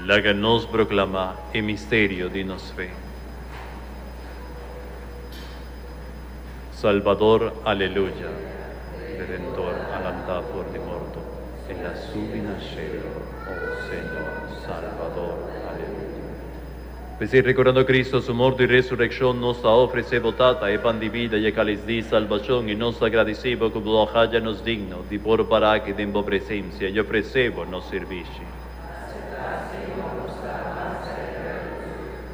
Laga nos broklamá e misterio di nos fe. Salbador, Aleluya! Redentor a lantá for di morto, El a subi na shelo, O Señor, Salbador, Aleluya! P'esei, rekordando Kristu su morto i resurekshon, nos ta ofresé bo, Tata, e pan di bida i e kalis di salbashon, i nos ta gradisí bo ku bo a haja nos digno di por para aki den bo presensia i ofresé bo nos sirbishi.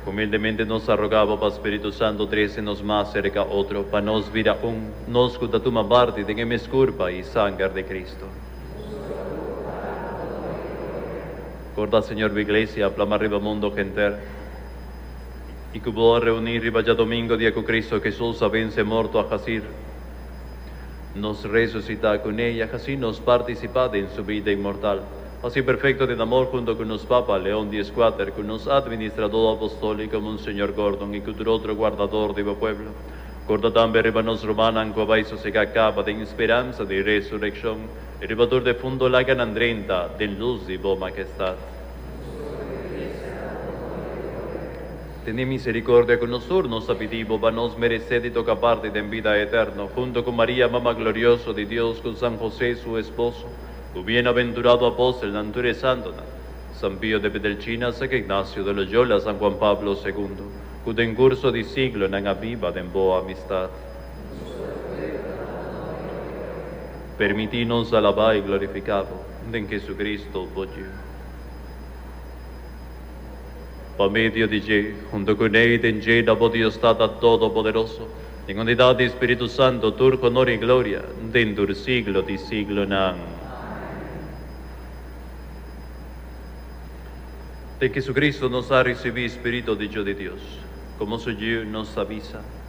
Humildemente nos ta rogá bo pa spiritu santu trese nos mas serka otro, pa nos bira un, nos ku ta tuma parti den e mes kurpa i sanger di Kristu. Corda Señor bo Iglesia a plama riba mundo henter y cu bo a reuni riba djadomingo dia cu Cristo Hesus a vence morto a hacir nos resucita cu Ne y a haci nos participa den Su bida inmortal. Haci perfecto den amor hunto cu nos Papa Leon di Escuater, cu nos Administrador Apostolico Monseñor Gordon y cu tur otro guardador di bo pueblo. Corda tambe riba nos rumannan cu a bay sosega caba den speransa di resureccion. E ribador de fundo laga nan drenta den luz di bo Makestad. Tene misericordia cu nosur, nos ta pidi bo pa nos merece di toca parti den bida eterno hunto cu Maria Mama Glorioso di Dios cu San Jose su esposo, cu bienaventurado apostelnan tur e santonan, San Pio de Petelchina, San Ignacio de Loyola, San Juan Pablo Segundo, cu den curso di siglonan a biba den bo amistad. Permití nos alabá i glorifiká Bo den Jesucristo, Bo Yu. Pa medio di dje, huntu ku n'ei den dje ta Bo Dios Tata Todopoderoso, den unidat di Spiritu Santo, tur honor i gloria den tur siglo di siglonan. Den Jesucristo nos a risibí Spiritu dicho di Dios, komo Su Yu nos a bisa.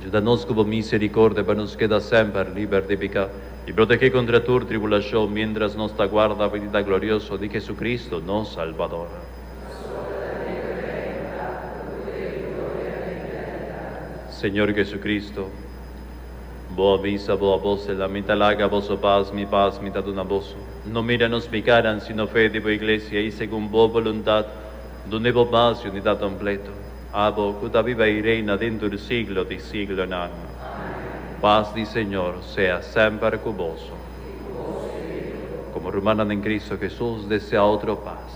Juda nos ku bo miserikordia pa nos keda semper liber di piká i protegé kontra tur tribulashon miéntras nos ta guarda venida glorioso di Hesukristu, nos Salbador. Señor Hesukristu, bo a bisa bo apòstelnan, Mi ta laga boso pas, mi pas mi ta duna boso. No mira nos pikanan, sino fe di bo iglesia, i segun bo boluntat dune bo pas yunidat kompletu. Abo cu ta biba y reina dentro di siglo di siglonan. Paz di Señor sea semper cu boso. Como rumannan den Cristo Jesus, desea otro paz.